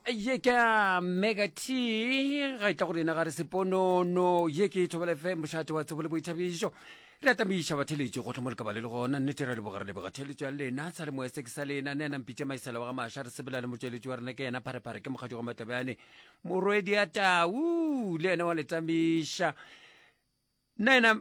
ye ke a mega t ga e tla go rena ga re seponono ye ke e thobela fe mošate wa tsebo le boithabišo re atamiša batheletši go tlhomo lekaba le le gona nnete ra leboga re leboga theletšo ya lena sa le moya se ke sa lena ne a nampitša maisela wa ga maša re sebela le motšweletši wa rena ke yena pharephare ke mokgatšo wa matlabjane morwedi ya tau le yena wa letamiša nna yena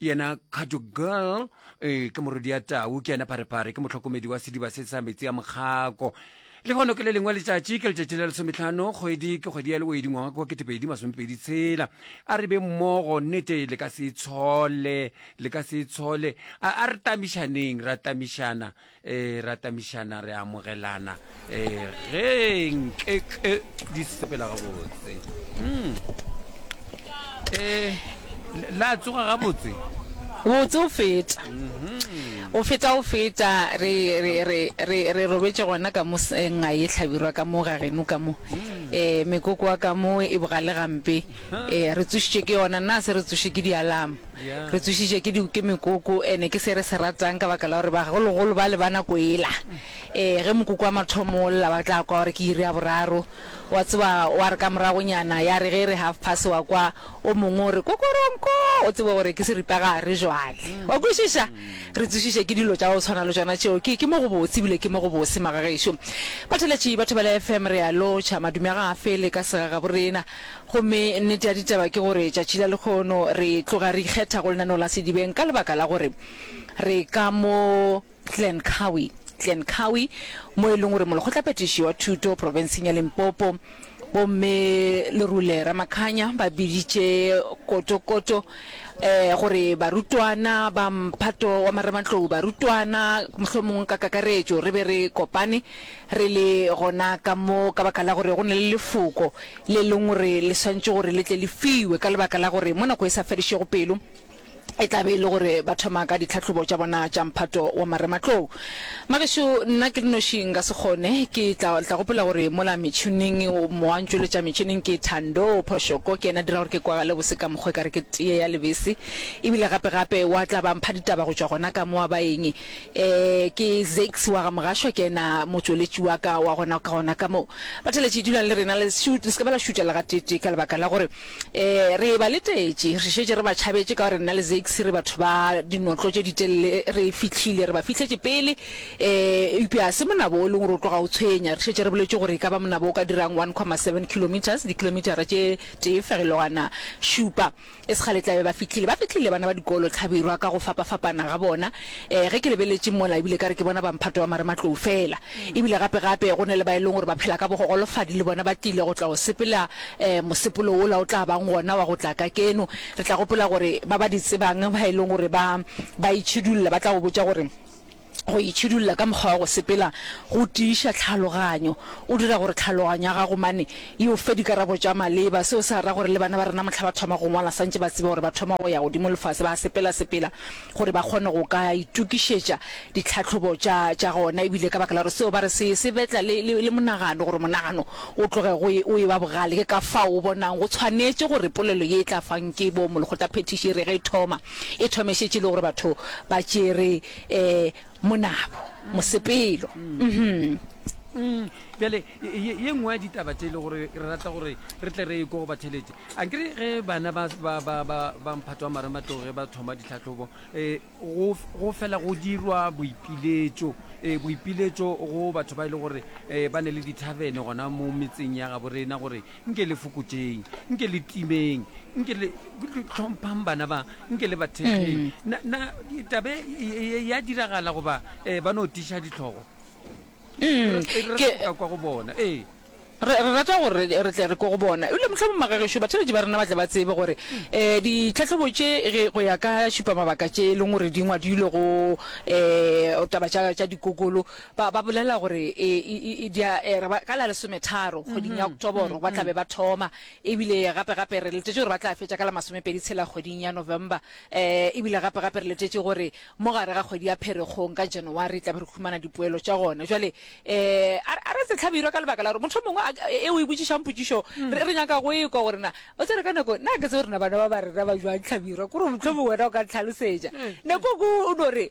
yena kgajo girl e ke morodi ya tau ke yena pharepare ke motlhokomedi wa sediba se sa metsi ya mokgako le gono ke le lengwe letšatši ke letšatši la lesometlhano kgwedi ke kgwedi ya lewedi ngwaga kwa ketepedi masomepedi tshela a re be mmogo nnete le ka se tshole le ka se tshole a re tamišaneng ra tamišana e ratamišana re amogelana e ge nke ke di sepela gabotse um e la tsoga gabotse botse o feta o feta o feta re re re re re robetse gona ka mo senga e tlhabirwa ka mo ga geno ka mo eh mekoko wa ka mo e bogale gampe Ee, re tsošitšwe ke yona. Nna a se re tsošwe ke di-alarm. Re tsošitšwe ke di, ke mekoko, ene ke se re se ratang ka baka la gore bagologolo bale ba nako ela, ee, ge mokoko wa mathomo o lla, ba tla kwa gore ke iri ya boraro. Wa tseba, wa re ka moragonyana, ya re ge e re half past, wa kwa o mongwe o re, Kokoronko! O tsebe gore ke seripagare jwale. Wa kwešiša? Re tsošitšwe ke dilo tša go tshwana le tšona tšeo. Ke, ke mo gobotse, ebile ke mo gobose, magagešo. Batheletši, batho ba le FM, re a lotšha. Madume a ga a fele ka segagaborena. Gomme nnete ya ditaba ke gore tšatši la lekgono re tloga re ikgetha go lenaneo la sedibeng ka lebaka la gore re ka mo Glencowie, Glencowie, mo e leng gore molekgotlaphethiši wa thuto profenseng ya Limpopo, Bomme Lerule Ramakhanya, ba biditše kotokoto eh, gore barutwana ba mphato wa marematlou, barutwana mohlomong ka kakaretšo, re be re kopane Re le gona ka mo ka baka la gore go na le lefoko le leng gore le swantše gore le tle le fiwe ka lebaka la gore mo nako e sa fedišego pelo e tla be e le gore ba thoma ka ditlhahlobo tša bona tša mphato wa marematlou. Magešo, nna ke le noši nka se kgone, ke tla tla gopola gore mola metšhining mowa o ntšweletša metšhining ke Thando Phoshoko, ke yena a dira gore ke kwagale bose ka mokgwa e ka re ke teye ya lebese. Ebile gape gape wa tla ba mpha ditaba go tšwa gona ka mo wa ba eng Ee, ke Zakes wa ga Mogashwa, ke yena motšweletši wa ka wa gona ka gona ka moo. Batšweletši, dulang le rena, le se ke ba la šutša le gateetee, ka lebaka la gore ee, re eba letetše, re šetše re ba tšhabetše, ka gore nna le Zakes re batho ba dinotlo tše ditelele, re fihlile, re ba fihletše pele. Ee, eupša ga se monabo o leng gore o tloga o tshwenya, re šetše re boletše gore e ka ba monabo o ka dirang one comma seven kilometres, dikilometara tše tee fegelwana šupa. E se kgale tlabe ba fihlile. Ba fihlile bana ba dikolo, tlhabirwa ka go fapafapana ga bona. Ee, ge ke lebeletše mola, ebile ekare ke bona bamphato ba marematlou feela. Ebile gape-gape go na le ba e leng gore ba phela ka bogogolofadi, le bona ba tlile go tla go sepela um mosepolo wola o tla bang gona wa go tla ka keno. Re tla gopola gore ba ba di tsebang, ba e leng gore ba ba itšhidulla, ba tla go botša gore, Go itšhidulla ka mokgwa wa go sepela go tiiša tlhaloganyo. O dira gore tlhaloganyo ya gago mane e o fe dikarabo tša maleba. Seo se ra gore le bana ba rena mohla ba thoma go ngwala santše ba tseba gore ba thoma go ya godimo lefase, ba sepelasepela gore ba kgone go ka itokišetša ditlhahlobo tša tša gona. E bile ka baka la gore seo ba re se se betla le le le monagano gore monagano o tloge go e o e ba bogale. Ke ka fao o bonang go tshwanetše gore polelo ye e tla fang ke bo molokgotaphethiši e re ge e thoma e thome e šetše e le gore batho ba tšere Ee, monabo, mosepelo. Uhum. Uhmm. Bjale, ye, ye nngwe ya ditaba tše e le gore re rata gore re tle re e ko go batheletše. A ke re ge bana ba, ba, ba, ba, ba Mphato wa Marematlou ge ba thoma ditlhahlobo, eh, go, go fela go dirwa boipiletšo, eh, boipiletšo go batho ba e le gore, eh, ba ne le dithabene gona mo metseng ya gabo rena gore nke le fokotšeng nke le timeng nke le tlhomphang bana ba nke le bathekgeng na na tabe e- e- e- ya diragala goba um ba no tiša ditlhogo Mm, Re- re ke- ka kwa go bona ee re re rata gore re- re tle re ko go bona ebile motlha mo magagešo batheletši ba rena ba tle ba tsebe gore um ditlhatlhobo tše ge go ya ka šupa mabaka tše e leng gore di ngwadilwe go um taba tša tša dikokolo Ba, ba bolela gore e, e, e, e dia, e, re ba, ka la lesometharo kgweding ya Oktoboro ba tla be ba thoma, ebile gape gape re letetše gore ba tla fetša ka la masomepedi tshela kgweding ya November, eh, ebile gape gape re letetše gore mo gare ga kgwedi ya Pherekgong ka January tla be re humana dipoelo tša gona. Jwale eh, a, a re se tlhabirwa ka lebaka la gore motho mongwe a, e o e botšišang potšišo re, re nyaka go e kwa gore na o tsere ka nako na ke tse gore na bana ba ba rena ba jwang tlhabirwa kore motlho mongwe wena o ka ntlhalosetša nako ko o no re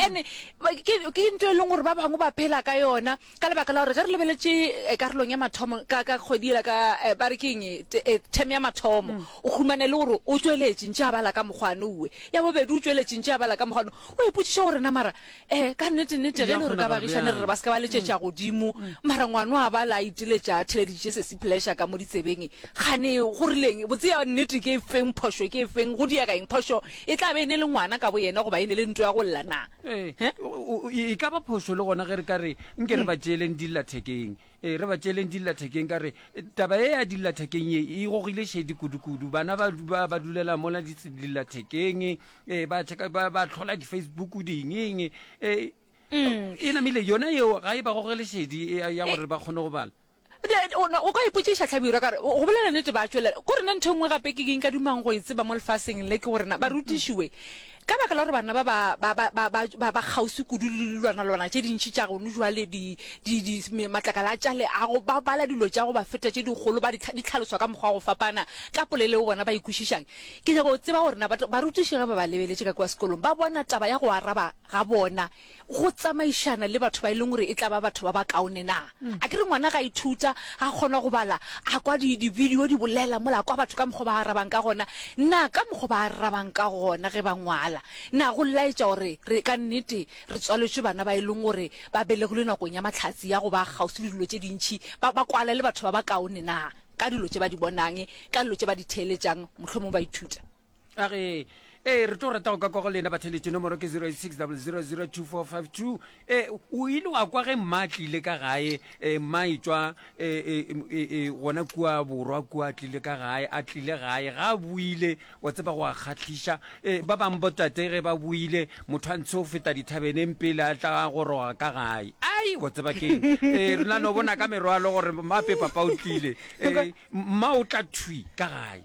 ene ke into e leng gore ba bangwe ba phela ka yona ka lebaka la gore ge re lebeletse eh, karolong ya mathomo ka ka kgwedi ela ka eh, ba re keng eh, tem ya mathomo mm. o humane le gore o tsweletše ntse a bala ka mokgwane uwe ya bobedi o tsweletše ntse a bala ka mokgwane o ipotsiša gore na mara um ka nnetennete ge e le gore ka bagišane re re ba se ka ba letšetša mm. godimo mm. mara ngwano a bala a iteletša a theleditše se sepleša ka mo ditsebeng gane gorileng botseya nnete ke e feng phošo ke e feng go diakaeng phošo E tla be e ne le ngwana ka boyena goba e ne le ntlo ya go lla na? Ee, e ka ba phošo le gona ge re ka re nke re ba tšeeleng dillathekeng. Ee, re ba tšeeleng dillathekeng ka re taba ye ya dillathekeng ye e gogile šedi kudu-kudu. Bana ba ba ba dulela mola dillathekeng, ee, ba tšheka ba ba tlhola di-Facebook dingeng. Ee, e namile yona yeo ga e ba gogele šedi ya gore ba kgone go bala. O ka ipotšiša, Hlabirwa, ka re, go bolela nnete, ba tšwelela. Ko rena ntho e nngwe gape ke ke nka dumang go e tseba mo lefaseng le, ke gore na barutiši we, ka baka la gore bana ba ba, ba, ba, ba, ba, ba kgauswi kudu le lilwanalwana tše dintši tša gono jwale, di, di, di, matlakala a tša leago, ba bala dilo tša go ba feta tše dikgolo, ba di, di tlhaloswa ka mokgwa wa go fapana ka poleleo bona ba e kwešišang. Ke nyaka go tseba gore na barutiši ge ba ba lebeletše ka kua sekolong ba bona taba ya go araba ga bona go tsamaišana le batho ba e leng gore e tla ba batho ba bakaone na? A ke re ngwana ga ithuta, ga kgona go bala, a kwa dibidio di bolela mola, a kwa batho ka mokgwa ba arabang ka gona na, ka mokgwa ba arabang ka gona ge ba ngwala na go laetša gore re ka nnete re tswaletšwe bana ba e leng gore ba belegilwe nakong ya mahlatse ya go ba kgauswi le dilo tše dintši, ba ba kwala le batho ba bakaone na ka dilo tše ba di bonang, ka dilo tše ba di theeletšang, mohlomongwe ba ithuta? a re ee re tlo rata go ka kwa go lena batheletše nomoro ke 06000245 e o ile wa kwa ge mma a tlile ka gae e, mma e tswa e, e, e, e, gona kua borwa kua tlile ka gae a tlile gae ga a buile wa tseba go a kgatlhiša e, ba bangwe botate ge ba buile motho a ntshe o feta dithabeneng pele a tla goroga ka gae ai wa tseba keng e, re na no bona ka merwalo gore mma pepa pa o tlile e, mma o tla thwi ka gae